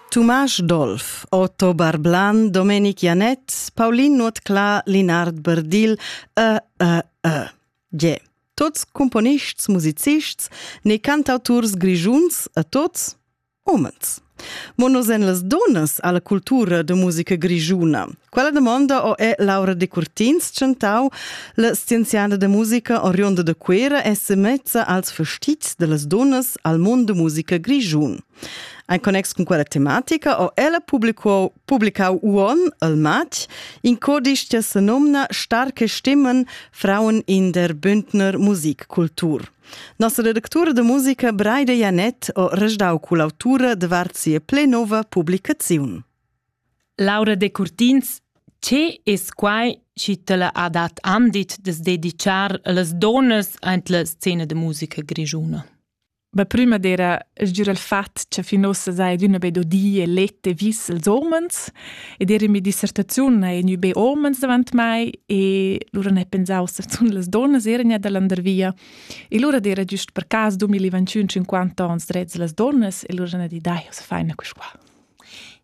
Tumasch Dolf, Otto Barblan, Domenic Janett, Paulin Nuotclà, Linard Berdil e, e, e. Ge. Tots cumponists, musicists, ne cantauturs grigiuns e tots homens. Mo nos en las donas alla cultura de musica grigiuna. Quella domanda ho è Laura Decurtins chantau la scienziada da musica oriunda da Cuera e semezza als fastits dellas dunnas al mondo da musica grischun. En connex con quella tematica ho ella publicau, publicau uon al matg in codisch che se nomna Starke Stimmen Frauen in der Bündner Musikkultur. Nossa redactura de musica Breide Janet ho resdau cull'autura davart sia plenova publicaziun. Laura Decurtins Che es quai chi tilla ha dat andit da's dedichar a las duonnas aint la scena da musica grischuna? Be prüma d'eira sgür il fat cha fin uossa saja adüna be do di e let e vis als uomens ed eir in mia dissertaziun haja gnü be uomens davant mai e lura n'he pensà uossa zunt las duonnas eran gnir da landervia e lura d'eira güst per cas dumil i vantschün cinquanta ons drets da las duonnas e lura n'ha dit dai uossa faina quist qua.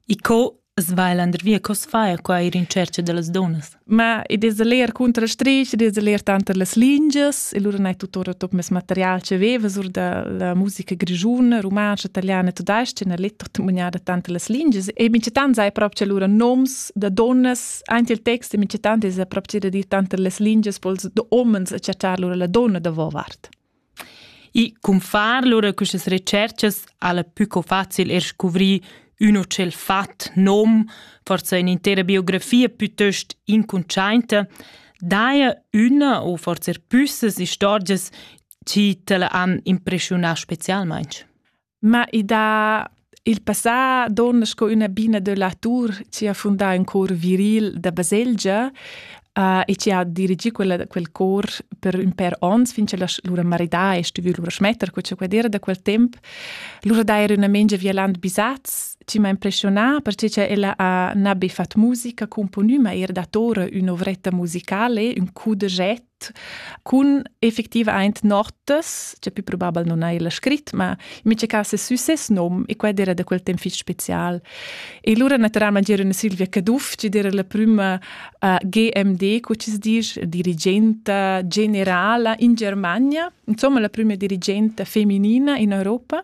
E co as va el andervia? Co as fa qua ir in tschercha da las dunnas? Ma id es leer cunter la strich, id es leer tanter las lingias e lura n'hai tuttora tot mes material che vevas or da la musica grischuna, rumantscha, italiana e tudais-cha, n'ha let tutmugnada tanter las lingias e minchatant sai prop cha lura noms da dunnas, aint il text e minchatant es prop cha da dir tanter las lingias po'ls da homens a chattar lura la donna davo vart. I cunfar lura questas retscherchas ha la pü co facil er scuvrir üno tschel fat nom, forsa in'intera biografia pütöst incuntschainta, daja üna o forsa er püssas istorgias chi t'la han impreschiunà specialmaing. Ma i dà il passà donna sco üna bina da latur chi ha fundà ün cor viril da baselgia uh, e chi ha dirigì quella, quel cor per ün pêr ons fin cha lura maridà e stuvü lura schmetter co cha quel era da quel temp. Lura d'eira üna mengia vialant bisats chi m'ha impressionà perche cha ella ha na be fat musica componü, ma eir datora ün'ovretta musicale, ün coup de jet cun effectivaint notas, cioè più probabel non hai la scrit, ma in mica cas è sü ses nom e quai era da quel temp fich special. E lura naturalmente era una Silvia Caduff, ci era la prima uh, GMD, co ci dice, dirigente generale in Germania, insomma la prima dirigente femminina in Europa.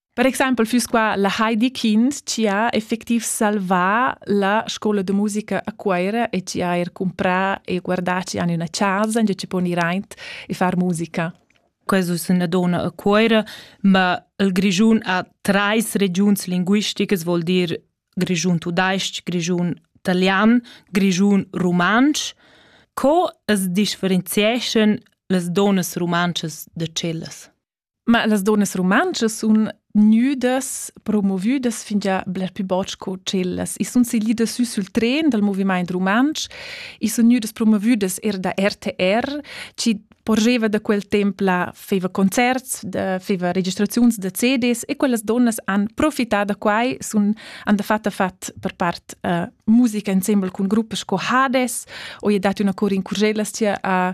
Per exempel füss qua la Heidi Kind chi ha effectiv salvà la scoula de musica a Cuoira e chi ha eir cumprà e guardà chi han üna chasa ingiò chi pon ir aint e far musica. Questo es üna donna a Cuoira, ma il Grischun ha trais regiuns linguisticas, vuol dir Grischun tudais-ch, Grischun italian, Grischun rumantsch. Co as differenzieschan las donnas rumantschas da cellas? Ma las donnas rumantschas sun gnüdas promovüdas fingià bler pü bod sco tschellas. I sun siglidas sü sül tren dal movimaint rumantsch, i sun gnüdas promovüdas eir da RTR, chi porgeva da quel temp là feva concerts, da feva registraziuns da CDs e quellas donnas han profità da quai, sun han dafatta fat per part uh, musica insembel cun gruppas sco Hades, o i è dat üna cor in curgellas chia a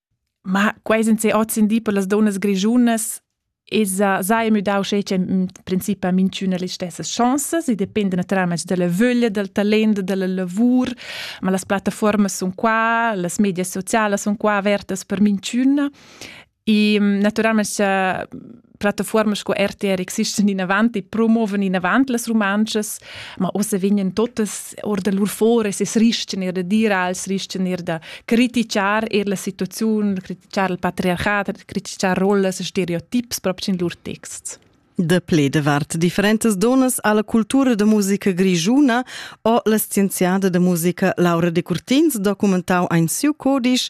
Ma quei sin se ozendi per las donnas grischunas esa sai müdau schetg in princip a minchüna las stessas chancas e dependa natüralmaing dalla vöglia, dal talent, dalla lavur, ma las plattafuormas sun qua, las medias socialas sun qua avertas per minchüna e natüralmaing plattaforme sco RTR existen inavant e promoven inavant las romances, ma ossa vegnen totas or da lur fores es rischen er da dir als rischen er da critichar er la situaziun, critichar il patriarchat, critichar rollas e stereotips proprio in lur texts. De ple davart differentas donas alla cultura da musica grigiuna o la scienziada da musica Laura de Curtins documentau ein siu codisch